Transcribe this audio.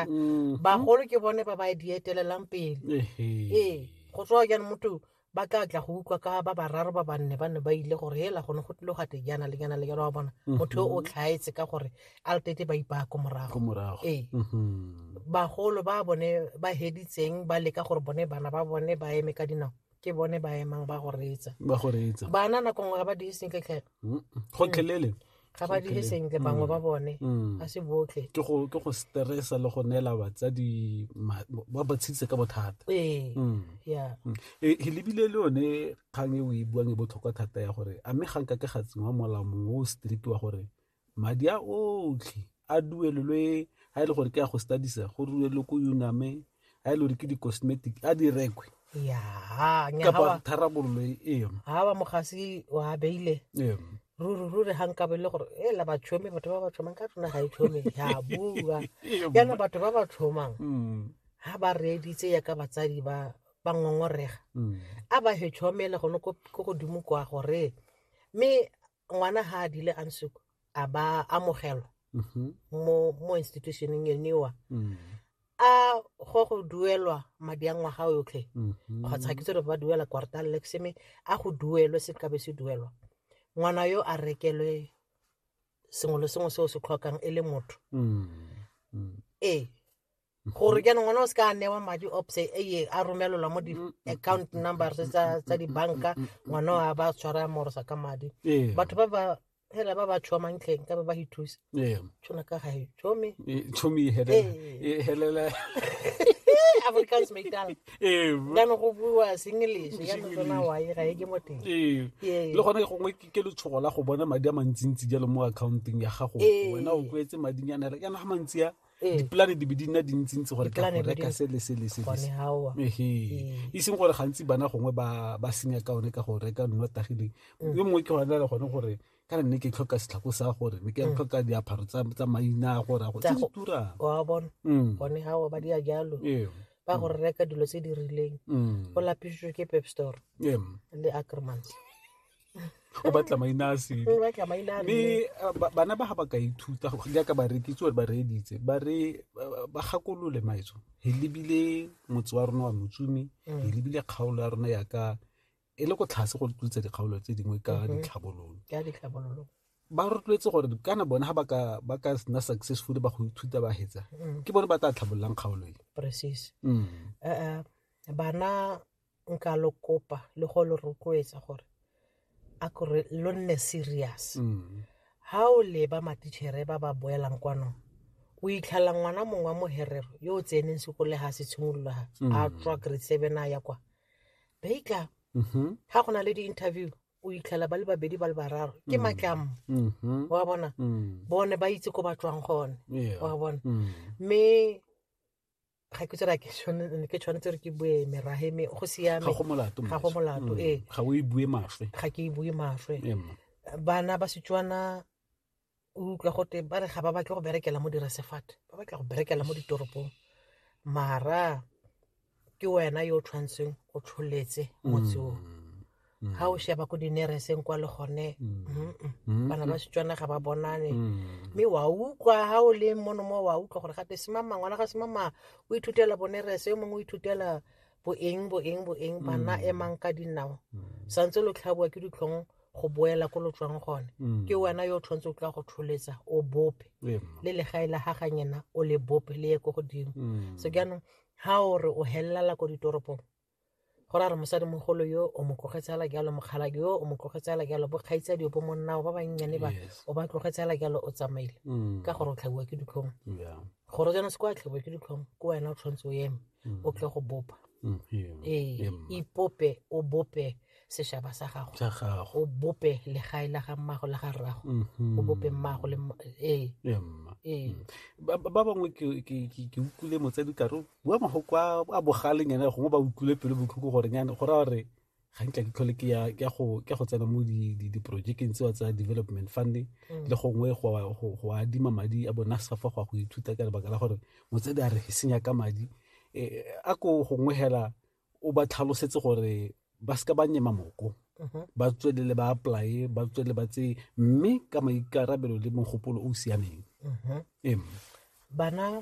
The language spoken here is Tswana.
Mm-hmm. bagolo ke bone ba ba di etelelang pele ee go tswa jaanong motho ba tla tla go utlwa ka ba bararo ba banne ba ne ba ile gore hela gone go tlile gate jaana le jaana le jaana wa bona mm-hmm. motho o tlhaetse ka gore a le tete ba ipaya ko morago ee mm-hmm. bagolo ba bone ba heditseng ba leka gore bone bana ba bone ba eme ka dinao ke bone ba emang ba go reetsa ba go reetsa bana nako nngwe ga ba dire sentle tlhela mm, gotlhelele mm. ga ba dire sentle bangwe ba mm. bone ga se botlhe ke go stressa le go neela batsadi ba ba tshedise ka bothata ee ya e, e lebile le yone kgang e o e buang e botlhokwa thata ya gore a mme ga nka ke ga tsenngwa molao mongwe o strict wa gore madi a otlhe a duelelwe a e le gore ke a go studies go duelelwe ko uname a e le gore ke di-cosmetic a di rekwe kapa tharabololo eo ga ba mogasi wa beile ruri ruri ga nka bele gore e la batšhomi batho ba ba tšhomang ka tsona ga e tšhomi ya bua yana batho ba ba tšhomang ga mm. ba reeditse yaka batsadi ba ba ngongorega mm. a ba he tšhomele gone ko godimo kwa gore mme ngwana ha a dile a nsuku a ba amogelwa mm-hmm. mo mo institutioneng eniwa mm. a go go duelwa madi a ngwaga yotlhe mm-hmm. kgotsa ke tsere ba duela quartal lexeme a go duelwe se kabe se duelwa ngwana yo a rekelwe sengwe le sengwe se o se tlhokang e le motho mm. mm. ee gore ke nngwe o se ka newa madi opse eye a romelelwa mo di-account numbers tsa tsa dibanka ngwana a ba tshwara a morosa ka madi Ee. batho ba ba hela ba ba tshoa mantlheng ka ba ba ithusa Ee. tshwana ka ga e tshome Ee, tshomi e helela Ee. e helela africans maitala Ee, bo- jaanong go buiwa senglish jaanong tsona wae ga e ke mo teng Ee. Ee. le gone gongwe ke ke letshogo la go bona madi a mantsintsi jalo mo accounteng ya gago Ee. wena o kwetse madinyana yana ga mantsi a Ee. dipolane di be di nna dintsintsi gore ka Dipolane go di be di- reka se le se le se le se. gone gaoa Ehe. e seng gore gantsi bana gongwe ba ba senya ka one ka go reka nno tagileng Mm. yo mongwe ke gona le gone gore kana nne ke tlhoka setlhako sa gore ne ke Mm. tlhoka diaparo tsa tsa maina a gore a go Tsa tse di go- turang wa bona Mm. gone gaoa ba dia jalo Ee. ba gore reka dilo tse di rileng Mm. go lapišitswe ke pep store Ee. le acremans o batla maina a sele mme bana ba ga ba ka ithuta jaaka barekitse gore ba reeditse ba re ba gakolole maetso e lebile motse wa rona wa motsumi e lebile kgaolo ya rona yaka e le go tlhase go tlotsa dikgaolo tse dingwe ka ditlhabololo ba rotloetse gore kana bone ga ba ka nna successful ba go ithuta ba hetsa ke bone ba tla tlhabololang kgaolo e bana nka lo kopa le go lo rotloetsa gore a kore lo nne serious mm. ha o leba matichere ba ba boelang kwano o itlhalla ngwana mongwe wa moherero yo o tseneng sekole ga se tshimolola a mm. tswa grade seven a ya kwa baika ga mm-hmm. go na le di-interview o itlhela ba le babedi ba le bararo ke mm. matlamo mm-hmm. wa bona bone ba itse ko ba tswang gone wa bona mme ga ke tsere ke tshwanetse ke tshwanetse re ke bue merahe me go siame ga go molato ga go molato mm. ee ga o e bue mafwe ga ke e bue mafwe bana ba setswana o utlwa gote ba re ga ba batle go berekela mo diresefate ba batla go berekela mo ditoropong mara ke wena yo o tshwanetseng o tsholetse motse o mm. ga o sheba ko dinereseng kwa le gone bana ba setswana ga ba bonane mme wa utlwa ga o le mono mo wa utlwa gore gate semama ngwana ga semama o ithutela bonerese yo mongwe o ithutela boeng boeng boeng bana emang ka dinao santse lo tlhaboa ke ditlhong go boela ko lo tswang gone mm. ke wena yo o tshwanetse o tla go tsholetsa o bope le legae la ga ganyena o le bope le ye ko godimo mm. so jaanong ga o re o helelala ko ditoropong go ra re mosadimogolo yo o mo tlogetse ala jalo mokgalake yo o mo tlogetse ala jalo bokgaitsadi bo monnao ba bannyane ba o ba tlogetse ala jalo o tsamaile mm. ka gore o tlhabiwa ke ditlhong gore jana se kwa tlhabiwa ke ditlhong ke wena o tshwanetse o eme mm. o tle go bopa mm, ee ipope o bope sešaba sa gago sa gago o bope legae la ga mmago la ga rrago Mhm. o bope mmago le mma- ee Ee, mma. ee Mm. ba ba- ba bangwe ke ke- ke- ke utlwile motsadi kare o bua magoko a a bogaleng ene gongwe ba utlwile pelo botlhoko gore nyane go raya gore ga nkla ke tlhole ke ya ke ya go ke ya go tsena mo di- di- diporojekeng tsewa tsa development funding Mm. le gongwe go a- go go adima madi a bona safa go ya go ithuta ka lebaka la gore motsadi a re e senya ka madi Eh, a ko gongwe hela o ba tlhalosetse gore ba seka ba nyema moko mhm. ba tswelele ba apply ba tswelele ba tse mme ka maikarabelo le mogopolo o o siameng mhm. bana